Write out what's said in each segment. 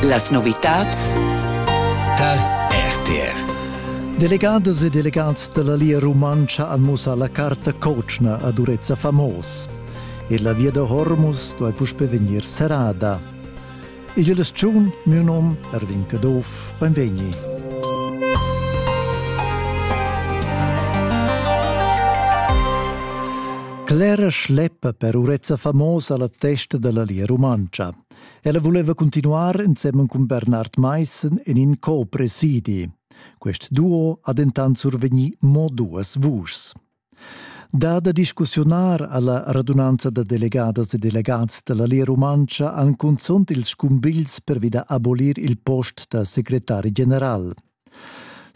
Las novitads tar RTR. Delegadas e delegats dalla Lia Rumantscha han mussà la carta cotschna a Durezza Famos. E la via da Hormus duai puspe vegnir serrada. Igl eschun miu nom Erwin Caduff, benvegni. Clara schleppa per urezza famosa la testa della Lia Rumantscha. Ella voleva continuar insemmen cun Bernard Meissen in in co-presidi. Quest duo ha dentant survegni mo duas vuschs. Da da discussiunar alla radunanza da delegadas e delegats della Lia Rumantscha han cunzont ils scumbigls per vida abolir il post da secretari general.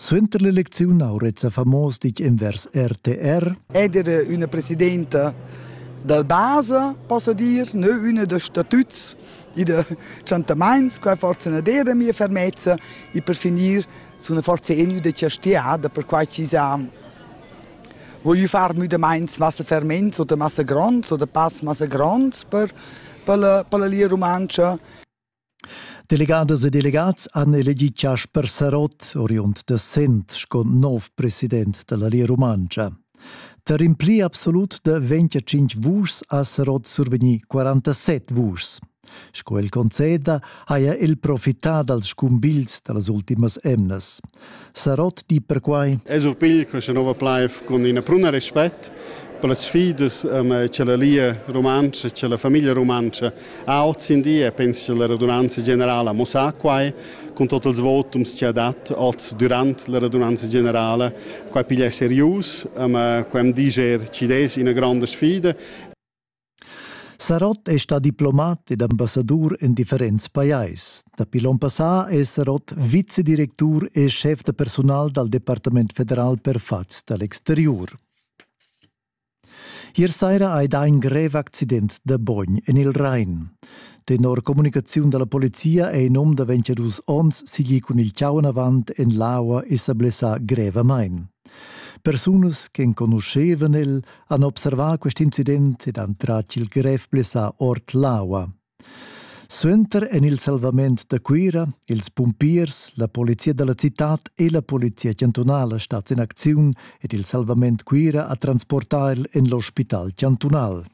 Suenter l'elecziun ha Reza Famos ditg envers RTR Eder üna presidenta dal basa, possa dir, nö üna da statuts i da tschantamaints, quai forza na dera mia fermezza e per finir sun forza eniu da chastiada per quai chi sa voglio far müdamaints massa ferments oder massa gronds oder pass massa gronds per per la, per la lia rumantscha Delegadas e delegats han elegì Chasper Sarott, oriund da Sent, sco nov president da la Lia Rumantscha. Tar in pli absolut da 25 vuschs ha Sarott survegnì 47 vuschs. Sco el conceda haja el profità dals scumbigls da las ultimas emnas. Sarot di perquai. E surpigl questa nova plaiv cun ina pruna respect per las sfidas che la Lia rumantscha, che la famiglia rumantscha ha oz in di e penso che la radunanza generala mo sa quai con tot ils votums che ha dat oz durant la radunanza generala quai piglia serius, quai am diger ci des ina granda sfida Sarott è stà diplomat ed ambassadur en differents pajais. Dapi l'onn passà è Sarott vicedirectur e schef da personal dal Departament federal per fatgs da l'exteriur. Ier saira hai dà in grev accident da bogn en il Rhein. Tenor communicaziun da la polizia è in um da 22 onns sigli cun il chau avant en l'aua e sa blessà grevamain. Persunas che enconuschevan el han observà quest incident ed han tratg il grev blessà ord l'aua. Suenter en il salvament da Cuira, ils pumpiers, la polizia da la citad e la polizia chantunala stats in acziun ed il salvament Cuira ha transportà el en l'ospital chantunal.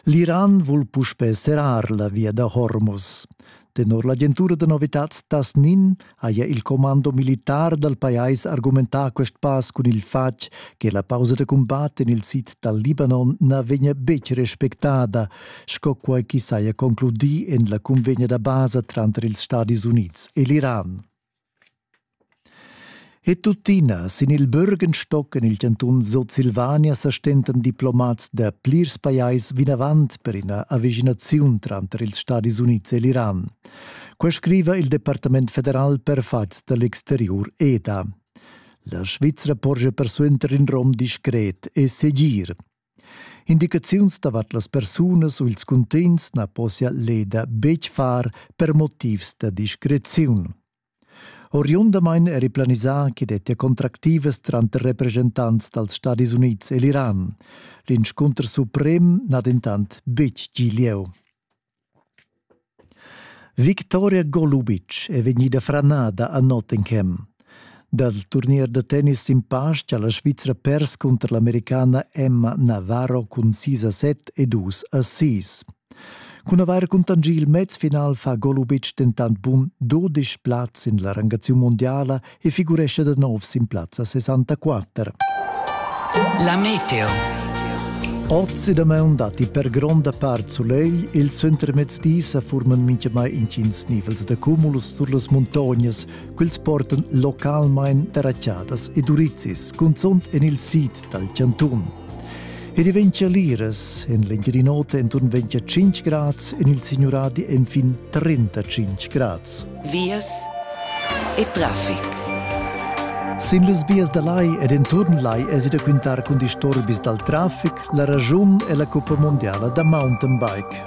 L'Iran vul puspè serrar la via da Hormuz. Tenor l'agentura da novitads Tasnin haja il commando militar dal pajais argumentà quest pass cun il fatg che la pausa da cumbat en il sid dal Libanon na vegnia betg respectada, sco quai ch'i saja concludì en la cunvegna da basa tranter ils Stadis Unids e l'Iran. E tuttina, sin il Bürgenstock en il chantun Sutsilvania sa stentan diplomats da plirs pajais vinavant per ina avischinaziun tranter ils Stadis Unids e l'Iran. Quai scriva il Departament federal per fatgs da l'exteriur EDA. La Svizra porscha persuenter in rom discret e segir. Indicaziuns davart las persunas u ils cuntegns na possia l'EDA betg far per motivs da discreziun. Oriundamain eri planisà ch'i dettia contractivas tranter represchentants dals Stadis Unids e l'Iran. L'inscunter suprem n'ha dentant betg gì lieu. Victoria Golubic è vegnida franada a Nottingham. Dal turnier da tennis sin pastg ha la Svizra pers cunter l'Americana Emma Navarro cun 6 a 7 e 2 a 6. Cun avair cuntanschì il mez final fa Golubic dentant bun 12 plaz sin la rangaziun mondiala e figuresce da nov sin plazza 64. La meteo. Oz e damaun datti per gronda part sulegl, il centremezdi sa forman mintgamai intgins nivels da cumulus sur las muntognas, quels portan localmain terracciadas e durizis, cunzunt en il sid dal chantun. Ed vegn liras en l'Engirinota enturn 25 grads, en il Signuradi enfin 35 grads. Vias e traffic. Sin las vias da lai ed enturn lai èsi da quintar cun disturbis dal traffic la raschun è la cuppa mondiala da mountainbike.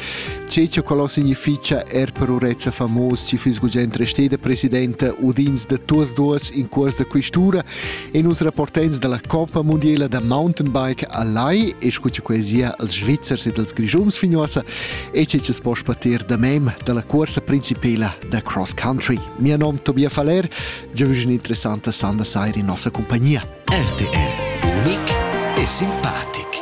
Tge che quello significha er per urezza famos ci füs gugent resteda presidenta udins da tuas duas in cuors da quistura e nus rapportens dalla Coppa Mondiela da Mountainbike a Lai e scuce coesia als Svizzers ed als Grischums fignosa e che ci spo spatir da mem dalla cuorsa principela da cross country. Mia nom Tobia Faller, già un interessante sanda sair in nossa compagnia. RTR, unic e simpatic.